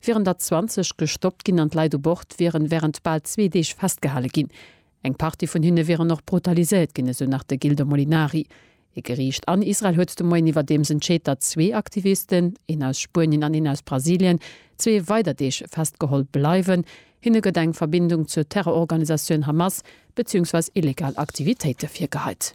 wieren der 20 gestoppt ginn an d'Leit u Bord wieren wärend bal zwee Deeg festgehale ginn. Eng Partie vun hinne wieren och brutaliséiert ginn, esou nach de Gildo Molinari. Ee Geriicht an Israel huet de Moien iwwerdeems entscheet, datt zwee Aktivisten, een aus Spuenien an een aus Brasilien, zwee weider Deeg festgeholl bleiwen. Hinne gëtt eng Verbindung zur Terrororganisatioun Hamas beziehungsweis illegal Aktivitéite virgeheit.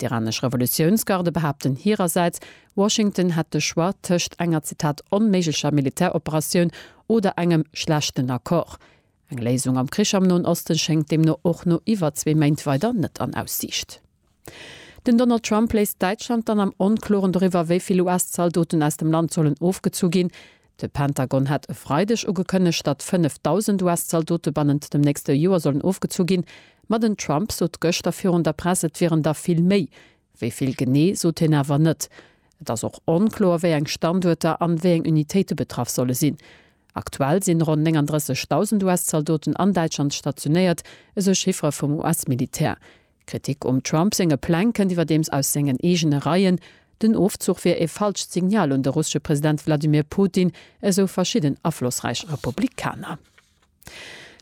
D'iranesch Revolutiounsgarde behaapten hirersäits, Washington hätt de Choix tëscht enger, Zitat, onméiglecher Militäroperatioun oder engem schlechten Accord. Eng Léisung am Krich am Noen Osten schéngt deemno och no iwwer zwee Méint weider net an Aussiicht. Den Donald Trump léisst Däitschland dann am Onkloren doriwwer, wéi vill US-Zaldoten aus dem Land sollen ofgezu ginn. De Pentagon hat e Freideg ugekënnegt, datt 5.000 US-Zaldote bannent dem nächste Joer sollen ofgezu ginn. Ma den Trump sot gëschter virun der Press, et wieren der vill méi. Wéi vill genee, sot hien awer net. Et ass och onkloer, wéi eng Standuerter an wéi eng Unitéite betraff solle sinn. Aktuell sinn ronn 39.000 US-Zaldoten an Däitschland stationéiert, esou Chiffere vum US-Militär. D'Kritik um Trump senge Pläng kënnt iwwerdeems aus sengen eegene Reien. Den Ofzuch wier ee falscht Signal un de russesche President Wladimir Putin, esou verschidden aflossräich Republikaner.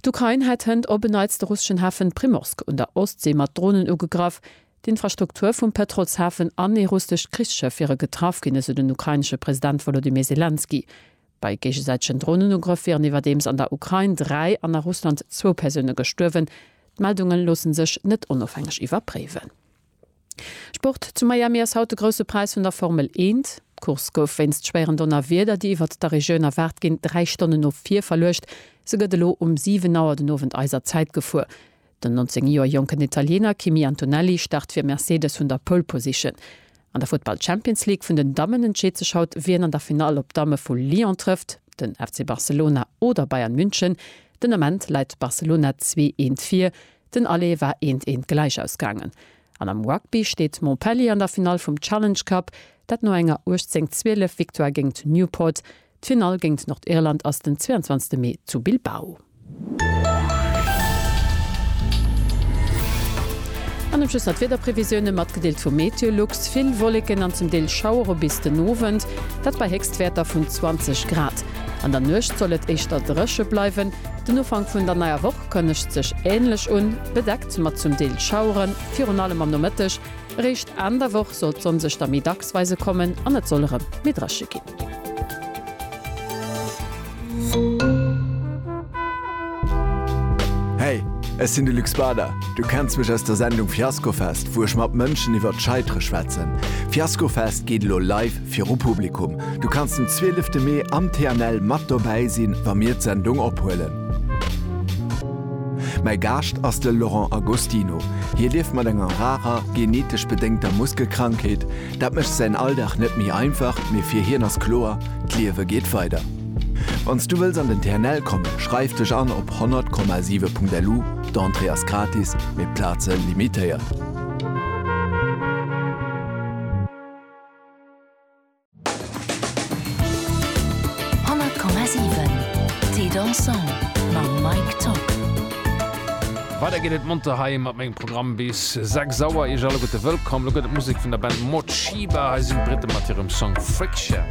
D'Ukrain hätt hënt op en Neits de russeschen Hafen Primorsk un der Ostsee mat Dronen ugegraff. D'Infrastruktur vum Pëtrolshafen an ee russescht Krichsschëff wiere getraff ginn, esou den ukrainesche President Wolodymyr Selenskyj. Bei géigesäitegen Dronenugrëff wieren iwwerdeems an der Ukrain dräi an a Russland zwou Persoune gestuerwen. D'Meldunge loosse sech net onofhängeg iwwerpréiwen. Sport, Zu Miami ass haut de Grousse Präis vun der Formel Eent. D'Course gouf wéinst schwéieren Donnerwieder, déi iwwert der Regioun erwaart ginn, dräi Stonnen no vir verluecht. Se gëtt elo um 7 Auer den Owend eiser Zäit gefuer. Den 19 Joer jonken Italiener Kimi Antonelli start fir Mercedes vun der Pole Position. An der Futtball Champions League vun den Dammen entscheet sech haut, wien an der Finall op d'Damme vu Lyon trëfft, den FC Barcelona oder Bayern München. Den Ament läit Barcelona zwee Eent vir, den Aller war eent eent gläich ausgaangen. An am Rugby steet Montpellier an der Finall vum Challenge Cup, dat no enger 18, 12 Victoire géingt Newport. D'Finall géint Nordirland ass den 22 Mee zu Bilbao. An dem Schluss nach d'Wiederprevisioune matgedeelt vu MeteoLux, Vill Wolleken an zum Deel Schauere bis den Owend, dat bei Héchstwäerter vun 20 Grad. An der Nuecht soll et éischter dréche bleiwen. Den Ufank vun der neier Woch kënnegt sech änlech un, bedeckt mat zum Deel Schauere virun allem am Nomëtteg. Eréischt Enn der Woch soll d'Sonn sech da méi dacks weise kommen an et soll erëm méi dréche ginn. Hey, ech sinn de Luc Spader. Du kenns mech aus der Sendung Fiaskofest, wou ech mat Mënschen iwwert d'Scheitere schwätzen. Fiaskofest geet elo live viru Publikum. Du kanns den 12 Mee am TNL mat dobäi sinn, wa mir d'Sendung ophuelen. Mäi Gaascht ass de Laurent Agostino. Hie lieft mat enger rarer, genetesch bedéngter Muskelkrankheet. Dat mécht säin Alldag net méi einfach, mee fir hien ass kloer, D'Liewe geet weider. Wann s du wëlls an den TNL kommen, schreif dech an op 100,7.lu, d'Entrée ass gratis, mee d'Plaze limitéiert. 100,7 Thé dansant mam Mike Tock. Weider geet et monter hei mat mengem Programm bis 6 Auer. Iech alleguerte wëllkomm. Lo gëtt et Musek vun der Band Morcheeba. Hei sinn d'Britten mat hirem Song Friction.